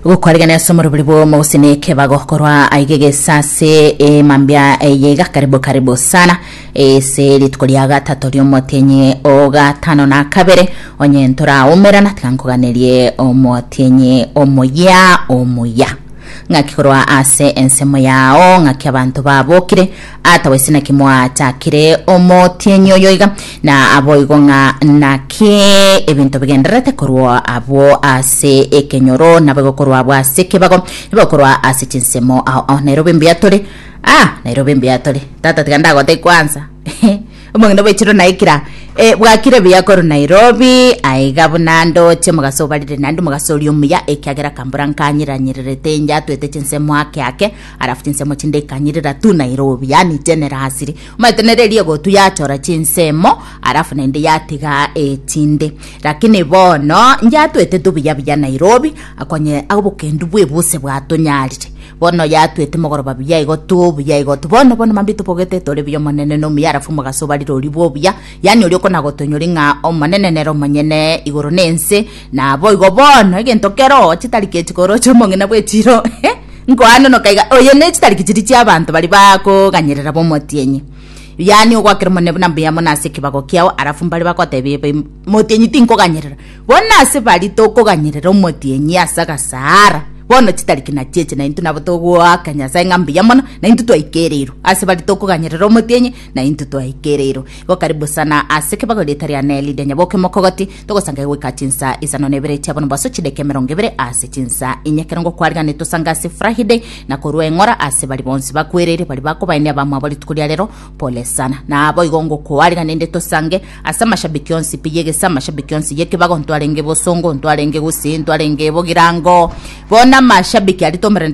gokwarigana ase omorobori bw'omo gose na ekebago korwa aiga egesa ase emambia eye iga karibu karibu sana ase rituko ria gatato riomotienyi ogatano na kabere onye ntoraumerana tiga nkoganerie omotienyi omuya omuya ng'aki korwa ase ensemo yao ng'aki abanto babokire Atawe ase naki mwatakire omotienyi oyo iga, na aboigo ng'a naki ebinto bigendererete korwa abwo ase ekenyoro, naboigo korwa abwo ase ekebago, naboigo korwa ase chinsemo. Ao ao nairobi mbuya tore, ah, nairobi mbuya tore. Tata tiga ndagotebie kwansa, omong'ina obechirwe naikira, eh, bwakire buya korwa Nairobi, aiga buna ndoche omogaso obarire naende omogaso oria omuya, ekiagera akambora nkanyeranyererete inche atwete chinsemo ake ake, Alafu chinsemo chinde ikanyirira tu Nairobi, yani generasiri omanyete nere eria egotu yachora chinsemo alafu naende yatiga echinde lakini bono yatwete tu buya buya Nairobi akonye abokendu bwa ebuse bwatonyarire bono yatwete mogoroba buya igo tu buya igo tu bono bono mambia tobogete tore buya omonene nomuya alafu omogaso obarire ori bobuya Yaani oria okonagotonyori ng'a Omonene nere omonyene igoro na ense, naboigo bono egento kero chitari ki chikoro chi'omong'ina bw'echiiro nkoanonoka iga, oye ne chitari ki chiri chi'abanto bari bakoganyerera b'omotienyi. Yaani ogwakera Omonene buna mbuya mono ase ekebago kiao, arafu mbare bagotebia ebe, Motienyi tinkoganyerera. Bono ase bari tokoganyerera omotienyi ase agasaara, bono chitari ki nachieche naintwe nabo togoaka Nyasae ng'a mbuya mono, naintwe twaikereirwe. Ase bari tokoganyerera omotienyi, Na intwe twaikeire iro, igo karibu sana ase ekebago erieta ria Nelly Denya boke mokogoti, togosangaye goika chinsa isano na ibere chia bonombaso chideka emerongo ibere ase chinsa inye ekerongo kwariganire tosange ase Friday na korua eng'ora ase bari bonsi bakwereire bari bakobaenia abamwabo rituko ria rero pole sana na abo igo ngokoariganende tosange ase amashabiki onsi pi yegesa amashabiki onsi yekebago ntwarenge bosongo ntwarenge gusii ntwarenge bogirango bono amashabiki aria tomerane